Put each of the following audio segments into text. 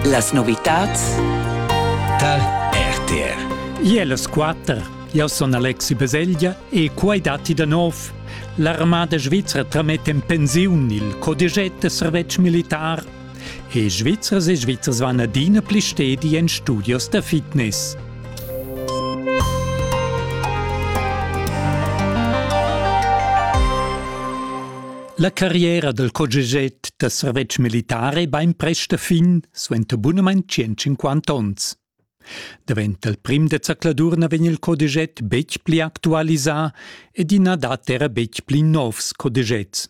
Las novitads tar RTR. Iel es quatter. Eu sun Alexi Beseglia e quai datti da nov. L'armada svizra trametta in pensiun il codigett da servetsch militar e Svizzers e Svizzers van adina pli stedi en studios da fitness. La carriera dal COGEGET da servetsch militar è bainprest a fin suenter bunamain 150 onns. Davent dal prim da zacladur na vegn il CODEGET betg pli actualisà ed i na dat era betg pli novs CODEGETs.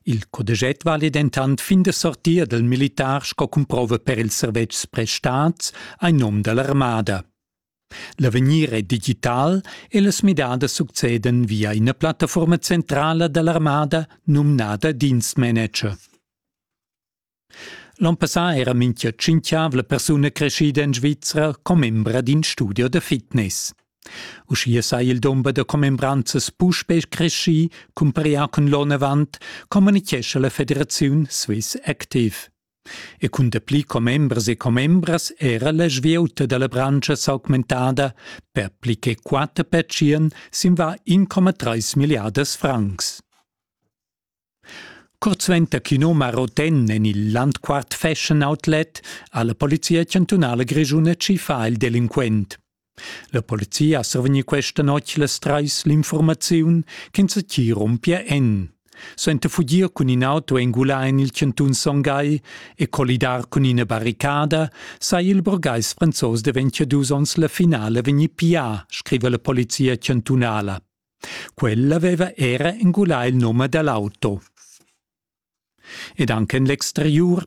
Il CODEGET vale dentant fin da sortir dal militar sco cumprova per ils servetschs prestats ein nom dall'armada. L'avegnir è digital e las midadas succedan via ina plattaforma centrala da l'armada numnada Dienstmanager. L'onn passà era mintga tschintgavla persuna creschida en Svizra commembra d'in studio da fitness. Uschia sei il dumber da commembranzas puspè creschì, cumparià cun l'onn avant, communichescha la federaziun Swiss Active. e cun dapli commembers e commembras era la svieuta dalla branscha s'augmentada per pli che quater pertschien sin va 1,3 milliardas francs. Kurzwender Kinoma Roten en il Landquart Fashion Outlet ha la Polizia chantunala grischuna tschiffà il delinquent. La polizia ha survegni questa notg las trais l'informaziun ch'ins ti rumpia en. Sente fugir cun in auto engulà en il cantun Son Gai e collidar cun ina barricada sai il burgais franzos daventia dus onns la finale vegnir pià, scriva la polizia chantunala. Quella aveva era engulà il num dell'auto. Ed anche en l'exteriur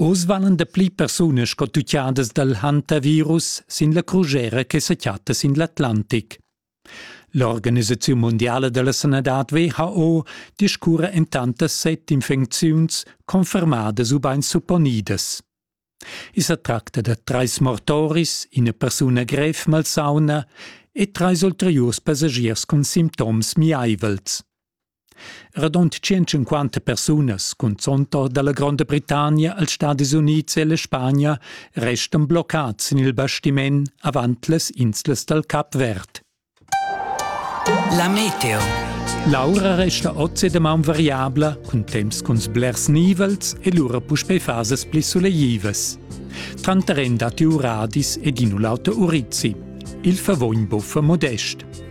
oz valan dapli persunas sco tutgiadas dal hantavirus sin la crugera che sa chatta sin l'Atlantic. L'organisaziun mondiala da la sanadad WHO discurra en tantas set infecziuns confermadas ubain supponidas. I sa tracta da trais mortoris, ina persuna grev malsauna e trais ulteriurs passagiers cun sintoms miaivels. Radund tschintschunquanta persunas, cunzont or dalla Gronda Britannia als Stadis Unids e la Spagna, restan bloccads sin il bastiment avant las inslas dal Cap Verd. La meteo. L'aura resta oz e damaun variabla, cun temps cun blers nivels e lura puspei fasas pli suleivas. Tranter en datti uradis ed in u l'auter urizzi. Il favogn buffa modest.